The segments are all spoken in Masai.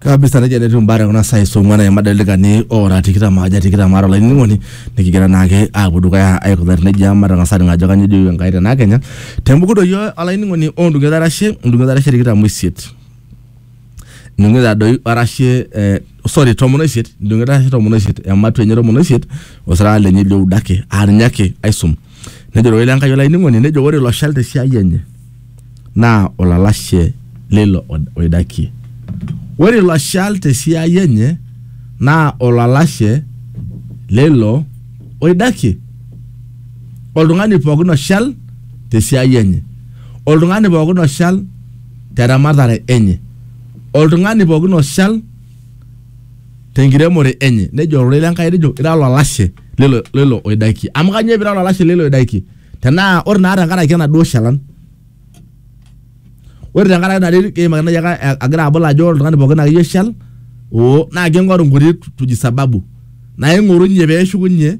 kabisa nejia netiu imbaa tekuna saai saa ong'uan aima delikani ora tikitam aja tikitam aare olainining'oni nikigira naake aapuo dukuya aikunari nejia matang'asa aning ajo kanyio ejoito Enkai tenaa kenya tembuku doi olainining'oni ondung'eta arashe ondung'eta arashe tikitam oisiet ndung'eta doi arashe eh, sorry tomon oisiet ndung'eta arashe tomon oisiet ematua enye tomon oisiet osirata lenye lioudo ake aa ninye ake aisum nejo ororei le Enkai olainining'oni nejo ore ilo shal tesiai enye naa olalashe leilo oidakie. Ore ilo shal te siai enye naa olalashe leilo oidakie. Oltung'ani pookin oshal te siai enye, oltung'ani pookin oshal te ramatare enye, oltung'ani pookin oshal te nkiremore enye, nejo ororei le Nkai nejo ira olalashe leilo oidakie. Amu kanyoo pira olalashe leilo oidakie? tenaa ore naa tenkaraki enaduo shalan ore tenkaraki ina terit keimaki nai ake a- agira abol ajo ore oltung'ani pookin akeyie oshal oo naa king'oru nkuti tuji sababu naing'orunye peeshukunye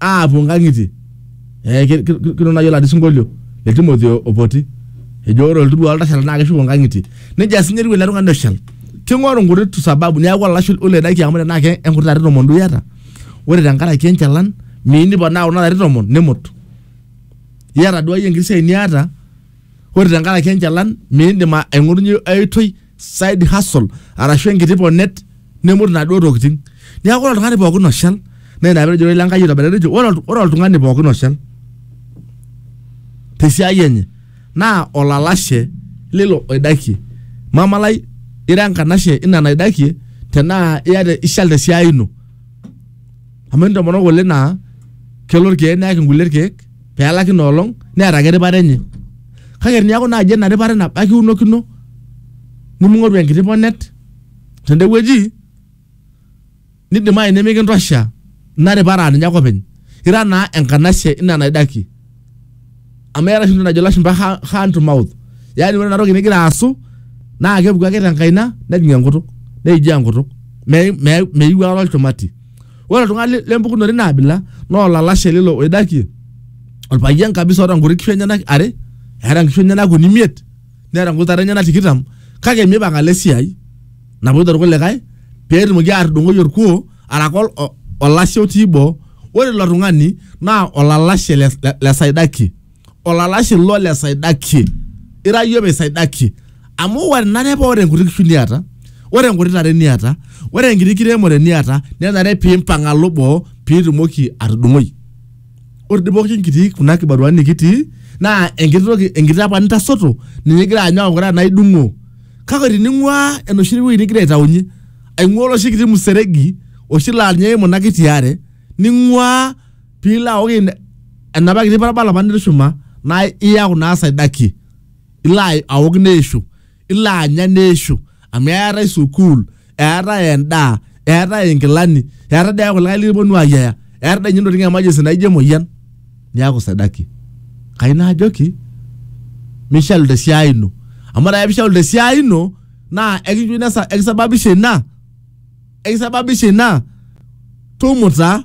aapuo nkang'itie eh, ki- ki- ki- kidol nai oladi sinkolio le timothy o- opoti ejo ore oltudu oltashala naa keshuko nkang'itie nejia sinye etiu ele tung'ani oshal king'oru nkuti tu sababu niaku olalashe oledaki amu tenaa ke enkuti are tomon duo iyata ore tenkaraki enchalan miyieu niponaa kuna larin tomon nimut iyata duo akeyie enkiti siai niata ore tenkaraki enchalan miindim a- aing'orunyie ai oitoi side hustle arashu enkiti ponet nimut inaduo tokitin niaku ore oltung'ani pookin oshal naa ina petejo ororei le Enkai aitobiraki etejo ore olt- ore oltung'ani pookin oshal tesiai enye naa olalashe lilo oidakie. Mama lai, ira enkanashe ina naidakie tenaa iata ishal te siai ino. Amu entomonok ng'ole naa kelo irkeek neyaki ng'ule irkeek pee elaki ina olong' neeta ake eripare enye. Kake teniaku naaji ena ripare nabo ake iunokino neming'oru enkiti ponet tende wueji. nidimayu nemikintosha ina ripara ninye ake openy ira naa enkanashe ina naidaki amu eeta oshi entoki najo ilashumba ha- hand to mouth yaani ore inatoki nigira aasu naa kepuku ake tenkaina nejing enkutuk neijaa enkutuk Me- me- meyiu aikata olchumati ore oltung'ani le- lempukunoto ina abila naa olalashe lilo oidakie orpayian kabisa oota nkuti kishu enyenak are eeta nkishu enyenak uni imiet neeta nkutare enyenak tikitam kake mipang alo esiai napoito irkulikae pee etumoki aatudung'oi orkuo araka ol- o- olashe otii boo ore ilo tung'ani naa olalashe le, le, le saidaki olalashe ilo le saidaki ira iyie saidaki amu ore nare paa ore enkuti kishu niata ore enkuti tare niata ore enkiti kiremore niata nenare piimpang alo boo piitumoki atudung'oi ore dii pooki kitii kuna kibaruani nikitii naa enkiti toki enkiti apa nintasoto ninye igira anyu aaku ira naa idung'o kake tining'uaa enoshi wueji nigira aitaunye aing'uaa oloshi kiti museregi oshi laa ninye eimu ina kiti are ning'uaa piilo aok ina- enapa kiti parabala apa nitushuma naa iyaku naa saidakie ilo ai- aok neishu ilo anya neishu amu eetae sukuul eetae endaa eetae inkilani eetae dee kulikae likiponu ayiaya eetae dee ninye intokitin emergency naijo emoyian niaku sidaki kai naajoki mishalu tesiai ino amu ore ake pishalu tesiai ino naa ekincho ina sa- ekisababisha ina ekisababisha ina tumuta